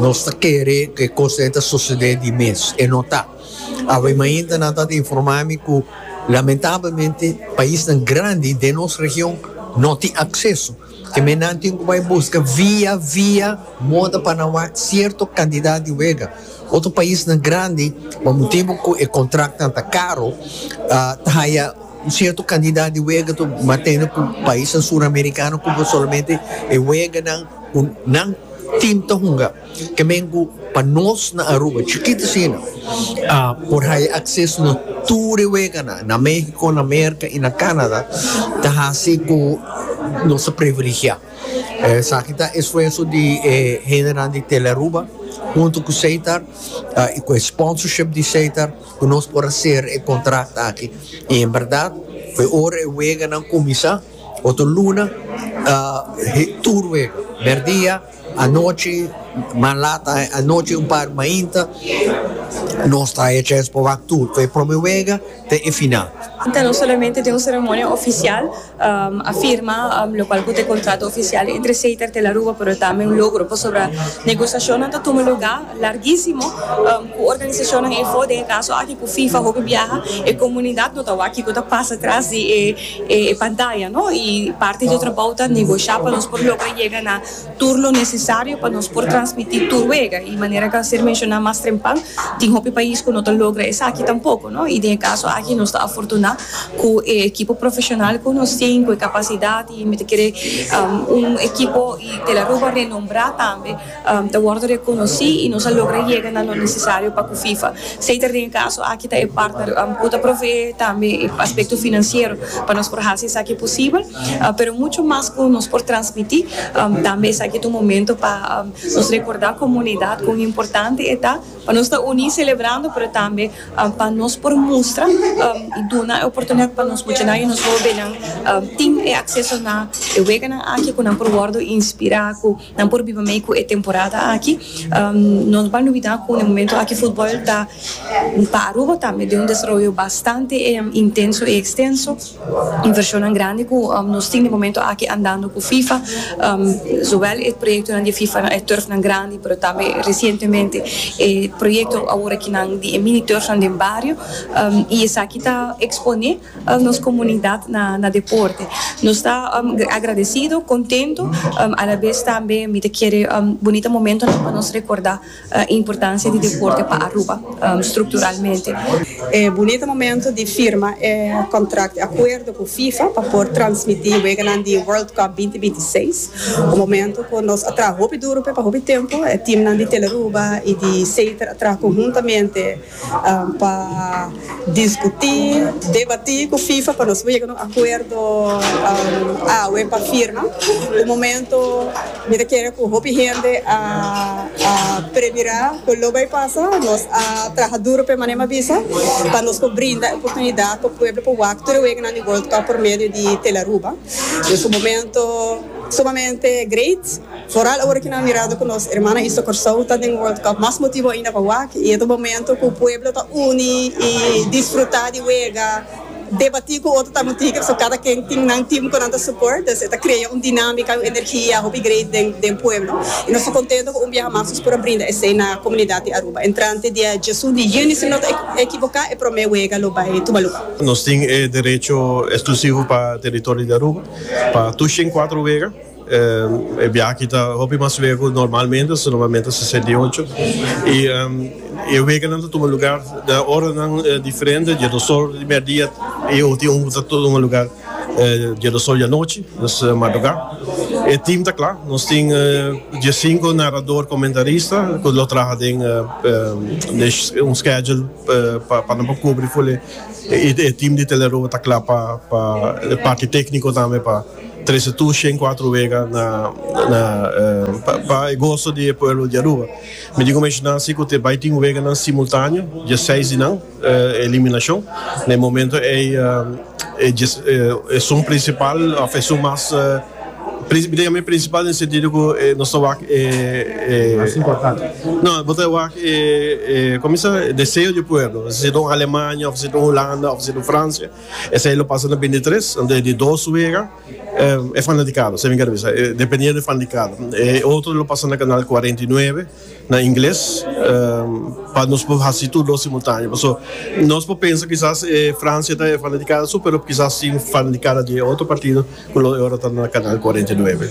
Nos ta kere ku e kosnan ta susedé di mes. E no ta. Awe mainta nan ta informá mi ku lamentablemente paisnan grandi den nos region no tin akseso. Kemey nan tin ku bai buska via via moda pa nan wak sierto kantidat di wega. Otro paisnan grandi pa motibu ku e kontraktnan ta karo ta haya un sierto kantidat di wega, ma tende ku paisnan suramerikano kubre solamente e weganan. Cu nan tin ta hunga kemen cu pa nos na Aruba chikito asina a por haya acceso na tur e weganan na Mexico, na Merca y na Canada ta haci cu nos ta privilegia. Esaki ta esfuerzo di e hendenan di Telearuba hunto cu Seitar y cu e sponsorship di Seitar cu nos por hacer e contract aki y en berdad fue ora e weganan cuminsa. Otro luna tur wega, merdia, anochi, mas lata anochi un par mainta nos ta hecha es por wak tur for e prome wega te e final. Ta nos solamente den un ceremonia oficial a firma locual cu ta e contrato oficial entre Seiter te La Ruba pero tambe un logro pasobra negociacionnan ta tuma lugar larguisimo cu organisacionnan ey for den e caso aki cu fifa hopi biaha e comunidad no ta wak kico ta pasa tras di e e pantaya no y parti di e trabou ta negosha pa nos por logra yega na tur lo necesario pa nos por transmiti tur wega y manera ca ser menciona mas trempan tin hopi pais cu no ta logra esaki tampoco no y den e caso aki nos ta afortuna cu e ekipo profesional cu nos tin cu e capacidad y mi ta kere un ekipo y Tel Aruba renombra tambe. ta wordo rekonosí i nos a logra yega na lo nesesario pa ku FIFA seita den e kaso aki ta e partner ku ta proveé tambe e aspekto finansiero pa nos por hasi esaki posibel pero mucho mas ku nos por transmití tambe esaki ta un momento pa nos rekordá komunidat kon importante e ta pa nos ta uní selebrando pero tambe pa nos por mustra i duna e oportunidat pa nos muchanan i nos hóbennan tin e akseso na e weganan aki ku nan por wordo inspirá ku. Nan por biba mei cu e temporada aki. Nos ba lubida cu na e momento aki futbol ta pa Aruba tambe den un desaroyo bastante intenso y extenso. Inversionnan grandi cu nos tin na e momento aki andando cu Fifa, zowel e proyectonan di e Fifa na e turfnan grandi, pero tambe recientemente e proyecto aworakinan di e mini turfnan den bario y esaki ta expone. nos comunidad na deporte. Nos ta agradecido, contento, alabes tambe mi ta kere bonito momentonan pa nos recorda e importancia di deporte pa Aruba structuralmente. E bunita momento di firma e contract di acuerdo cu FIFA pa por transmiti weganan di World Cup binti binti i seis, un momento cu nos a traha hopi duro p'e pa hopi tempo, e teamnan di Teleruba y di Seter a traha conhuntamente. pa diskutí, debatí ku fifa pa nos por yega na un akuerdo awe pa firma. Ku momentu mi ta kere ku hopi hende a premirá ku lo bai pasa. Nos a traha duru pa e manera mi a bisa pa nos por brinda e oportunidat pa pueblo por wak tur e weganan di World Cup por medio di Tele Aruba. Ku momentu sumamente great. Foral ora ki nan a mirado ku nos ermana Iso Kòrsou ta den World Cup mas motibu ainda pa wak i e ta momentu ku pueblo ta uni i disfrutá di wega, debatí ku otro tamotiker so kada ken tin nan tim ku nan ta suport dus e ta krea un dinámika un energia hopi great den den pueblo i nos ta kontentu ku un biaha mas nos por a brinda esei na komunidat di Aruba. Entrante dia djesun di yüni si mi no ta ekiboká e promé wega lo bai tuma lugá. Nos tin e derecho eksklusivo pa teritorio di Aruba pa tur shen kuatro wega. E biaha aki ta hopi mas luego cu normalmente, so normalmente ta sesenta i ocho, y e weganan ta tuma lugar na oranan diferente, dje dos or di merdia y e ultima un ta tuma lugar dje dos or di anochi, dus madruga. E team ta cla, nos tin diesinco narador comentarista cu lo traha den un schedule pa nan por cubri full, y e team di Tele Aruba ta cla pa e parti tecnico tambe pa. Trece tu shen cuatro wega na pa e goso di e pueblo di Aruba. Mi tin cu menciona si cu te bay tin weganan simultaneo, dia seis di nan eliminacion. Na e momento ey esun principal of esun mas, mi ta yama e principal na e sentido cu nos ta wak e, no, bo ta wak e, comisa, deseo di e pueblo. Si ta un Alemania, si ta un Hulanda, si ta un Francia. Esei lo pasa na bini tres ante di dos wega e fanatikado semi garabisa dependiendo di fanatikado e otro lo pasa na kanal cuarenta y nueve na ingles pa nos por hasi tur dos simultaneo paso nos por pensa kisas e Francia ta e fanatikada su pero kisas tin fanatikada di e otro partido ku lo e ora ta na kanal cuarenta y nueve.